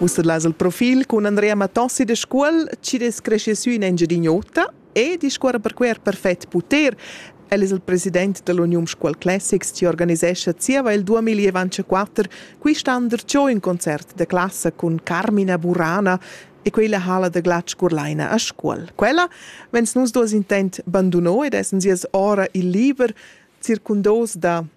Ussa las il profil cun Andrea Matossi de Scuol, chi es cresce sü in Engiadin'Ota e discuorra per quer perfet puter. El es il president dell'Union Scuol Classics chi organisescha zieva il 2024 quist'an darcheu ün concert de classa cun Carmina Burana e quella hala da glatsch curlaina a Scuol. Quella vens nus dos intent banduno ed essen sias ora il liber circundos da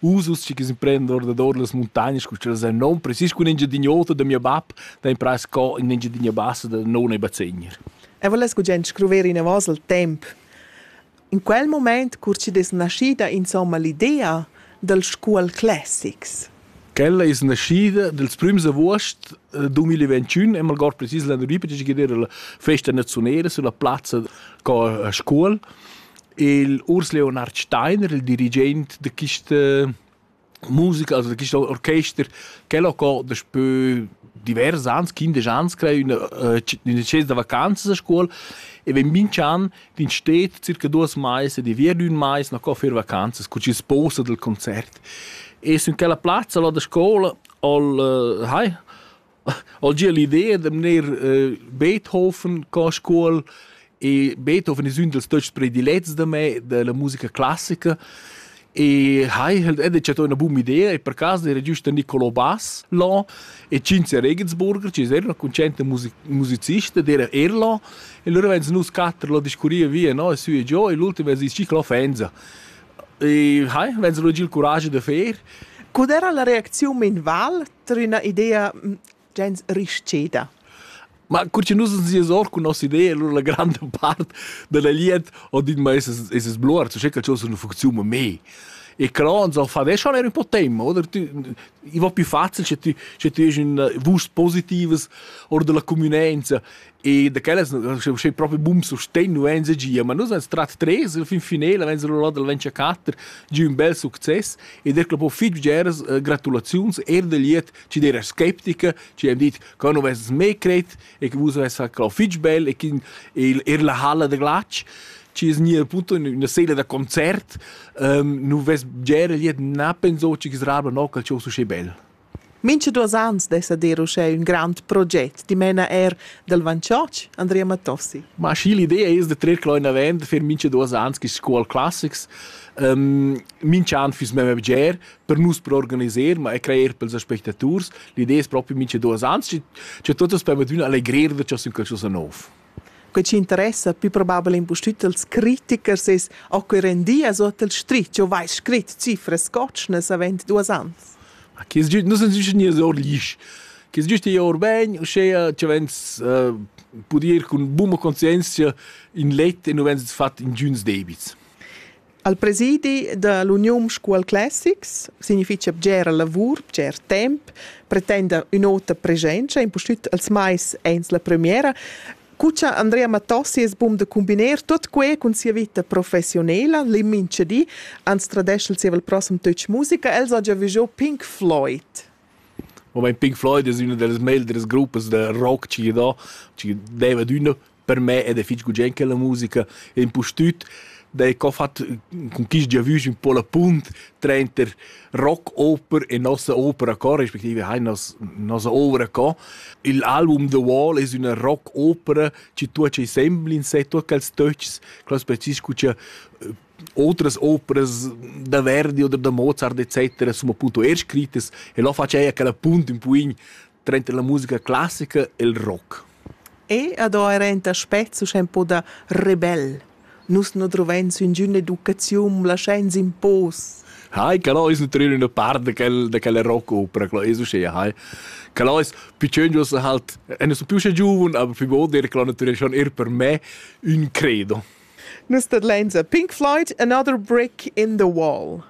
usus che imprende ordador las montagnas cu ch'els èn non precis cun engiadin'ota da mia bab da imprare sco in engiadina bassa da non e bazegner. E voless gugent scruver inavos il temp. In quel moment curci dess naschida insomma l'idea dal scuol classics. Quella es naschida dels prüms avuost eh, 2021 e malgord precis l'annurí perché gidera la festa naziunera sulla plazza co a Scuol il Urs Leonard Steiner, il dirigent de quista musica, also de questo orchester, quel ha co daspö divers ans, quindisch ans, crei üna, äh, üna scienza da vacanzas a scuola e vegn minch'an d'in stet circa duos mais e di via d'ün mais na co fer vacanzas, cu chi sposa del concert. E sun quella plazza là da scoula, al, äh, hai, Al gia l'idea da mner eh, Beethoven co scuol e Beethoven es ün dals töchs predilets da me della musica classica e hai halt ed chatto üna buna idea e per caso era giüst Niccolò Bass là e Cinzia Regensburger, che era una concetta music musicista d'era er là e lura vens nus quatter là discurriva via no e su e giò e l'ultima es schi l'offensa e hai vens lo giel curage da fer Co era la reacziun in val ter üna idea gens rischeda. Ma cur che nus ens or cun nossa idea, allora la grande part della liet ho dit ma es es sbluar, tu sai che cosa funziona me. E però uns ho fa veš schon er un po' tempo, oder tu i va più facile se tu se tu esi in vust positives or della communenza E da quellas sche propi bum sustegn nu en gia, ma nus vens trat tres il fin finela vens rolla dal Venture 4 giu un bel success e der clo po fitg geras uh, gratulaziuns er del liet ci der skeptica ci hem dit che nu vens me cret e che vus vens fa clo fitg bel e che er la halla de glac ci es nia punto una sela da concert um, nu vens gera liet na penso ci che srabla no calcio su bel Mincha duos ans dessa dir uschè ün grand proget, dimena eir dal Vanchotsch, Andrea Matossi. Ma schi l'idea es da trer quel inavant, da fer mincha duos ans quist Scuol classics. Um, mincha an füss memma bger per nus per organiser, ma e crajer pels aspectaturs. L'idea es propi mincha duos ans, cha tuot as permettüna allegrer da cha sün qualchosa nouv. Quei ci interessa più probabel impustüt als critichers es a que rendi as ot el scrit. Jo vais scrit cifras scotschnas avent duos ans. Ma che es giüst? Nu sun güst gnir or l'isch. Che es giüst ir or ben, uschea che vens uh, pud ir cun buna conscienzia in let e nu vens fat ingüns debits. Al presidi da l'Uniun Scuol Classics significha bgera lavur, bger temp, pretenda ün'ota presenza, impustüt als mais ains la premiera. Cu cha Andrea Mattossi es bun da combiner tuot que cun sia vita professionela, l'immincha di, ans tradescha il zieva il prossem Tötsch Musica, els ha già vigiò Pink Floyd. Moment Pink Floyd es üna da las meglieras gruppas da rock chi gy do, chi deva d'üna per me ed è fitg gugent che la musica è impustüt da co fat con chi gia vüs ün po la punt tranter rock-oper e nossa opera co respektive hai nos nossa ouvra co. Il album The Wall es üna rock-opera chi tuocha insembel in sé, tuot quels töchs, quels precis cu cha otras operas da Verdi oder da Mozart etc. insomma appunto er scrittas e lo faceia quella punt un poin Trenta la musica classica e il rock. E ad ho era enta aspects uschè un po da rebel. Nus nu druvains üngüna educaziun, laschains in pos. Hai, que ais nu trer üna part da quel, da quella rockopera, quella es uschea, hai. Que ais piccögnos halt, e nu sun più usce giuven, aber più god er, que naturalmente schon er per me un credo. Nus tadlains a Pink Floyd, Another Brick in the Wall.